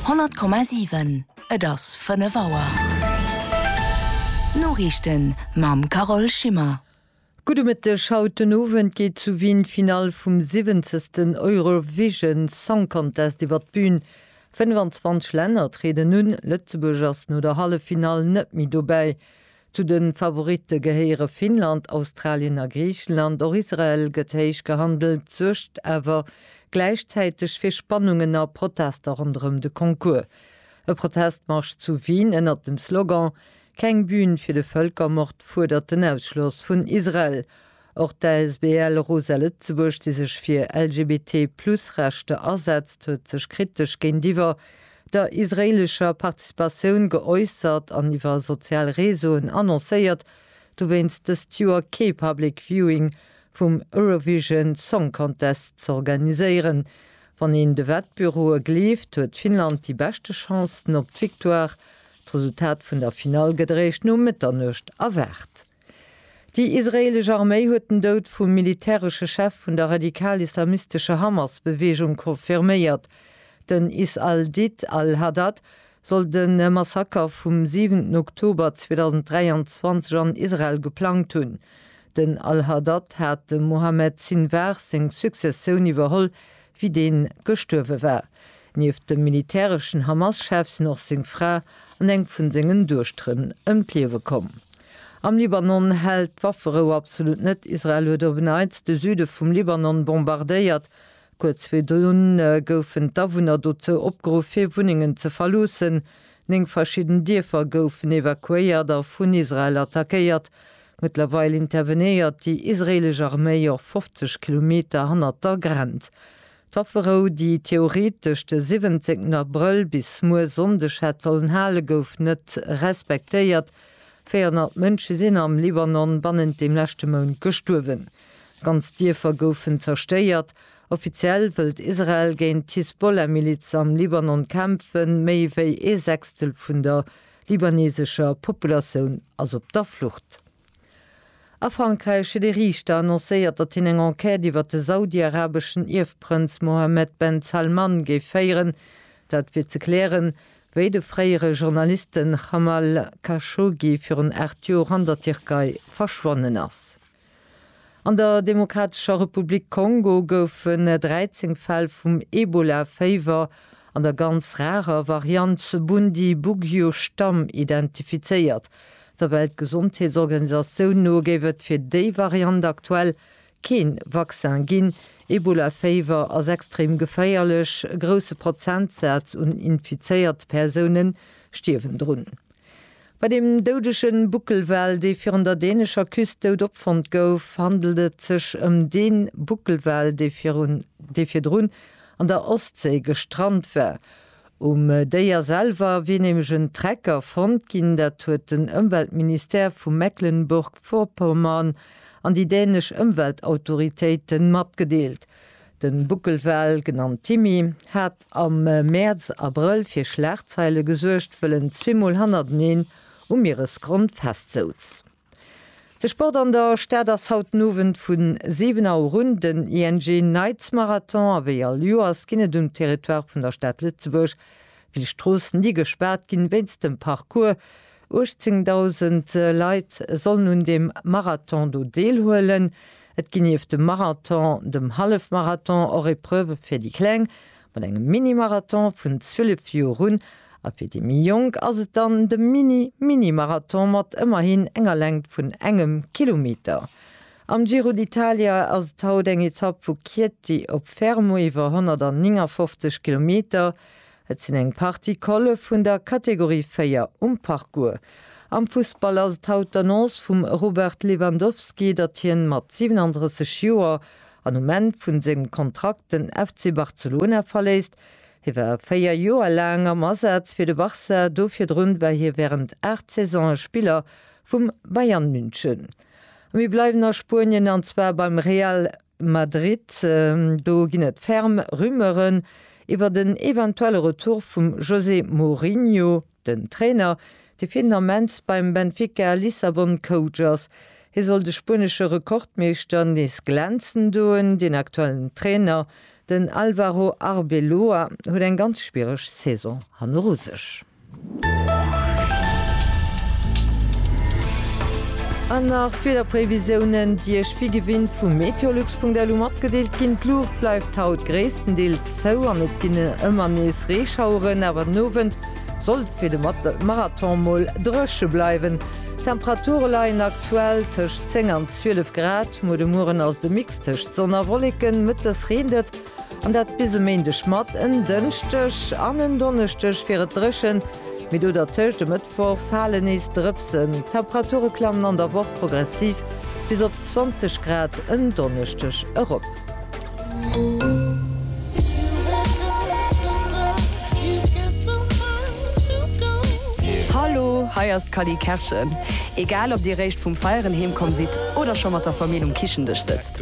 100,7 Et ass 5 Auer. D'Noriichten mam Carole Schimmer. Gudde Mëtteg, Haut den Owend geet zu Wien d'Finall vum siwwenzegsten Eurovision Song Contest iwwer d'Bün. 25 Länner trieden un, Lëtzebuerg ass no der Halleffinall net méi dobäi. Zu de Favoritte gehéiere Finnland, Australien a Griichenland. Och Israel gëtt héich gehandelt, suergt awer gläichzäiteg fir Spannungen a Protester ronderëm de Concours. E Protestmarsch zu Wien ënnert dem Slogan Keng Bühn fir de Vëlkermord fuerdert den Ausschloss vun Israel. Och d'ASBL Rosa Lëtzebuerg, déi sech fir LGBT-Plus-Rechter asetzt, huet sech kritesch géintiwwer der israeelescher Participatioun geäussert an iwwer sozial Réseauen annoncéiert, dowéinst dëst Joer kee Public Viewing vum Eurovision Song Contest z'organiséieren. Wann een de Wettbüroe gleeft, huet Finnland déi beschte Chancen op d'Victoire. D'Resultat vun der Finall gëtt eréischt no Mëtternuecht erwaart. Déi israeelesch Arméi huet den Doud vum militäresche Chef vun der radikal-islamistescher Hamas-Beweegung confirméiert. Den Is al-Did al-Haddad soll de Massaker vum siwenten Oktober 2023 an Israel geplangt hunn. Den al-Haddad hat dem Mohammed Sinwar seng Successioun iwwerholl, wéi deen gestuerwe war. Nieft dem militäreschen Hamas-Chef sinn och seng Fra an eng vun sengen Duechteren ëm d'Liewe komm. Am Libanon hält d'Wafferou absolut net. Israel huet Overnight de Süde vum Libanon bombardéiert. Kuerz virdrun goufen d'Awunner dozou opgeruff, hir Wunnengen ze verloossen. Néng verschidden Dierfer goufen evakuéiert a vun Israel attackéiert. Mëttlerweil intervenéiert déi israeelesch Arméi och 50 Kilometer hannert der Grenz. D'Wafferou, déi theoretesch de 17 Abrëll bis muer Sonndeg hätt sollen halen, gouf net respektéiert. 400 Mënsche sinn am Libanon bannent dem leschte Mount gestuerwen. Ganz Dierfer goufen zerstéiert. Offiziell wëllt Israel géint d'Hisbollah-Miliz am Libanon kämpfen. Méi wéi ee Sechstel vun der libanesescher Populatioun ass op der Flucht. A Frankräich huet ee Riichter annoncéiert, datt hien eng Enquête iwwer de saudiarabeschen Ierfprënz Mohammed Ben Salman géif féieren. Dat fir ze klären, wéi de fréiere Journalisten Jamal Khashoggi virun 8 Joer an der Tierkei verschwonnen ass. An der Demokratescher Republik Kongo goufen 13 Fäll vum Ebola-Féiwer an der ganz rarer Variant Bundi-Bugyo-Stamm identifizéiert. Der Weltgesondheetsorganisatioun no géif et fir déi Variant aktuell kee Vaccin ginn. Ebola-Féiwer ass extrem geféierlech, e grousse Prozentsaz un infizéierte Persoune stierwen drun. Bei dem doudege Buckelwal, dee virun der dänescher Küst dout opfonnt gouf, handelt et sech ëm dee Buckelwal, dee virdrun an der Ostséi gestrant war. Um Déier selwer wier nämlech en Trecker fonnt ginn. Dat huet den Ëmweltministère vu Mecklenburg-Vorpommern an déi dänesch Ëmweltautoritéite matgedeelt. De Buckelwal, genannt Timmy, hat am Mäerz, Abrëll fir Schlagzeile gesuergt, wëll en zweemol hannerteneen um Mieresgrond festsouz. De Sport an der Stad ass haut den Owend vu 7 Auer un den ING Nights Marathon a wéi all Joers ginn et um Territoire vun der Stad Lëtzebuerg vill Stroossen, déi gespaart ginn wéinst dem Parcours 18.000 Leit sollen un deem Marathon do deelhuelen. Et ginn nieft dem Marathon, dem Hallefmarathon och Epreuve fir déi Kleng, mat engem Mini-Marathon vun 12 Joer un, a fir déi méi Jonk ass et dann de Mini-Mini-Marathon mat ëmmerhin enger Längt vun engem Kilometer. Am Giro d'Italia ass et haut eng Etapp vu Chieti op Fermo iwwer 159 Kilometer, Et sinn eng Partie Colle vun der Kategorie 4 um Parcours. Am Fussball ass et haut d'Annonce vum Robert Lewandowski, datt hien mat 37 Joer an um Enn vun sengem Kontrakt den FC Barcelona verléisst. Hie war 4 Joer laang am Asaz fir de Barça, do virdrun war hie wärend 8 Saisone Spiller vum Bayern München. A mir bleiwen a Spuenien an zwar beim Real Madrid, Do ginn et ferm Rumeuren iwwert en eventuelle Retour vum José Mourinho, den Trainer, dee fir den Ament beim Benfica Lissabon Coach ass. Hie soll de spuenesche Rekordmeeschter nees glänzen doen. Den aktuellen Trainer, den Álvaro Arbeloa, huet eng ganz schwiereg Saison hanneru sech. An nach d'Wiederprévisiounen, déi Iech wéi gewinnt vum Meteolux.lu matgedeelt ginn. D'Luucht bleift haut gréisstendeels zou an et ginn ëmmer nees Reeschaueren, awer den Owend soll et fir de Marathon mol dréche bleiwen. D'Temperature leien aktuell tëscht 10 an 12 Grad. Muer de Mueren ass et e Mix tëscht Sonn a Wolleken, mëttes reent et. An dat bis e Méindeg mat en Dënschdeg an en Donneschdeg wier et dréchen, mee do dertëscht e Mëttwoch fale nees Drëpsen. D'Temperature klammen an der Woch progressiv bis op 20 Grad en Donneschdeg erop. Hallo, hei ass d'Cally Kerschen. Egal ob dir réischt vum Feieren heemkomm sidd oder scho mat der Famill um Kichendësch sëtzt,